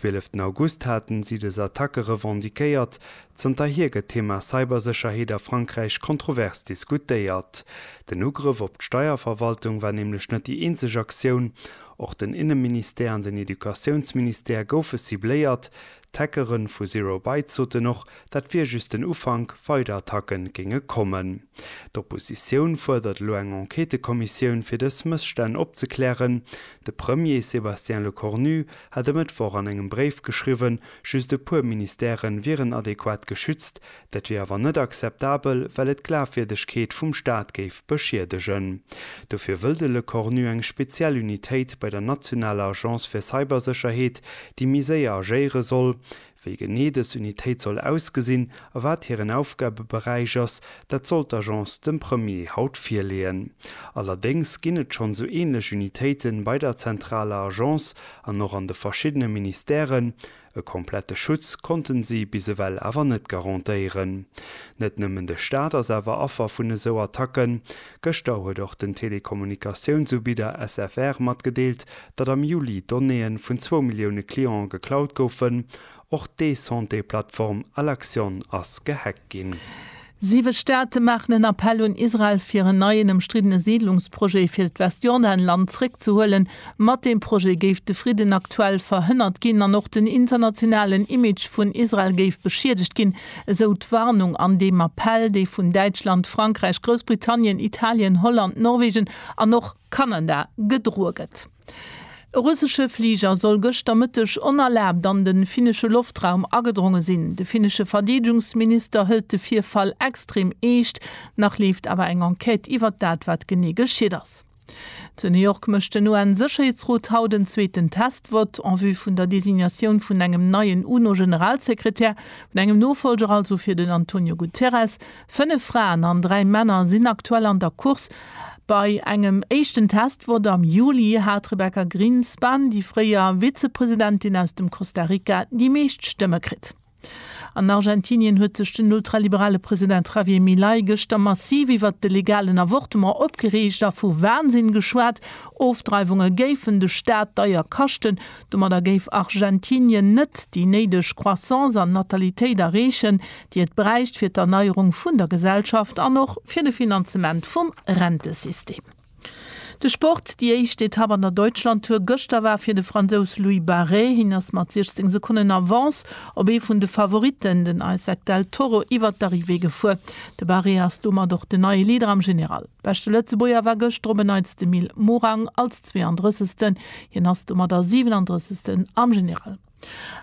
Wieleften August haten si des Attacke revendiquéiert. Zanterhier gëtt d'Thema Cybersécherheet a Frankräich kontrovers diskutéiert. Den Ugrëff op d'Steierverwaltung war nämlech net déi eenzeg Aktioun. Och den Inneministère an den Educatiounsministère goufe cibléiert. D'Hackere vu Zero Bytes soten och, dat wier just den Ufank, weider Attacke géinge kommen. D'Oppositioun fuerdert elo eng Enquêtëkommissioun fir dës Mësstänn opzeklären. De Premier Sébastien Lecornu hat e Mëttwoch an engem Bréif geschriwwen, just e puer Ministèren wieren adequat geschützt. Dat wier awer net akzeptabel, well et d'Glafwierdegkeet vum Staat géif beschiedegen. Dofir wëll de Lecornu eng speziell Unitéit bei der nationaler Agence fir Cybersécherheet, déi méi séier agéiere soll, Wéi genee dës Unitéit soll ausgesinn a wat hiren Aufgabeberäich ass, dat soll d'Agence dem Premier haut virleeën. Allerdéngs ginn et schonn sou änlech Unitéiten bei der zentraler Agence an och an de verschiddene Ministèren. E komplette Schutz konnten si bis ewell awer net garantéieren. Net nëmmen de Staat ass awer Affer vun esou Attacken. Gëschter huet och den Telekommunikatiounsubieder SFR matgedeelt, datt am Juli Donnéeë vun zwou Millioune Clientë geklaut goufen. Och d'E-Santé-Plattform Alaxion ass gehackt ginn. Siwe Staate maachen en Appell un Israel, fir en neien ëmstriddene Siidlungsprojet fir d'Westjordanland zréckzehuelen. Mat deem Projet géif de Fridden aktuell verhënnert ginn an och den internationalen Image vun Israel géif beschiedegt ginn, esou d'Warnung an deem Appell, dee vun Däitschland, Frankräich, Groussbritannien, Italien, Holland, Norwegen an och Kanada gedroe gëtt. E russesche Fliger soll gëschter Mëtteg onerlaabt an de finnesche Loftraum agedronge sinn. De finnesche Verdeedegungsminister hëlt de Virfall extrem eescht. Nach leeft awer eng Enquête iwwert dat, wat genee geschitt ass. Zu New York mécht den UN-Sécherheetsrot haut en zweeten Test-Vott en vue vun der Designatioun vun engem neien UNO-Generalsekretär, vun engem Nofolger also fir den Antonio Guterres. Fënnef Fraen an dräi Männer sinn aktuell an der Course. Bei engem éischten Test-Vott am Juli hat d'Rebecca Grinspan, déi fréier Vizepresidentin aus dem Costa Rica, déi meescht Stëmme kritt. An Argentinien huet sech den ultraliberale President Javier Milei gëschter massiv iwwert de legalen Avortement opgereegt a vu Wahnsinn geschwat. Ofdreiwunge géifen de Staat deier kaschten. Domadder géif Argentinien net déi néideg Croissance an Natalitéit erreechen, déi et bräicht fir d'Erneierung vun der Gesellschaft an och fir de Finanzement vum Rentesystem. De Sport, Déi éischt Etapp an der Deutschlandtour gëschter war fir de Fransous Louis Barré. Hien ass mat 16 Sekonnen Avance op ee vun de Favoritten, den Isaac Del Toro, iwwert d'Arrivée gefuer. De Barré ass domat och den neie Leader am General. Beschte Lëtzebuerger war gëschter op en Neits de Mil Morang als 32. Hien ass domat a 37. am General.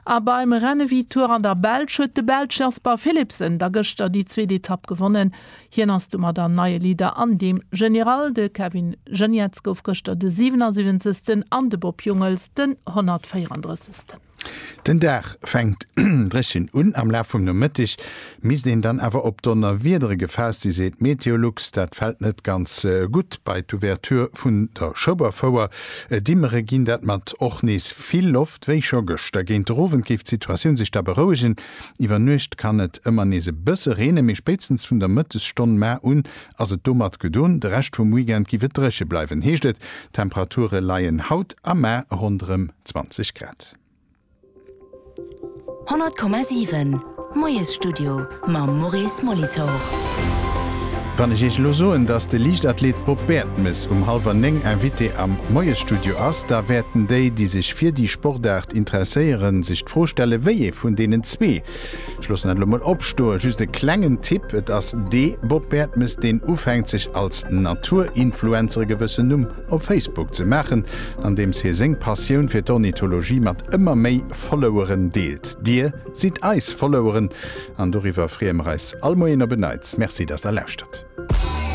A beim Rennen ewéi Tour an der Belsch huet de Belsch Jasper Philipsen da gëschter déi zweet Etapp gewonnen. Hien ass domat an neie Leader an deem General. De Kevin Geniets gouf gëschter de 77. an de Bob Jungels den 134. Den Dag fänkt dréchen un. Am Laf vum Nomëtteg misst een dann awer op Donnerwiedere gefaasst sinn, seet Meteolux. Dat fält net ganz gutt bei d'Ouverture vun der Schoberfouer. Dimmere ginn dat mat och nees vill Loft. Wéi scho gëschter géint de Rowend géif d'Situatioun sech da berouegen. Iwwer Nuecht kann et ëmmer nees e bësse reene, mee spéitstens vun der Mëttesstonn mar un ass et domat gedoen. De Rescht vum Weekend géif et dréche bleiwen, heescht et. D'Temperature leien haut a mar ronderëm 20 Grad. 100,7. D'Moiesstudio mam Maurice Molitor. Wann ech Iech elo soen, dass de Liichtathlet Bob Baertmes um hallwer néng Invité am Moiesstudio ass, da wäerten déi, déi sech fir déi Sportaart interesséieren, sech d'Fro stellen, wéi ee vun deenen zwee, ech loossen dat elo mol opstoen, just e klengen Tipp, et ass dee Bob Baertmes, deen ufänkt, sech als Natur-Influencer e gewëssen Numm op Facebook ze maachen, andeems hie seng Passioun fir d'Ornithologie mat ëmmer méi Followeren deelt. Dir. Sidd eis Followeren an doriwwer freeë mer eis all Moien op en Neits. Merci dass der lauschtert.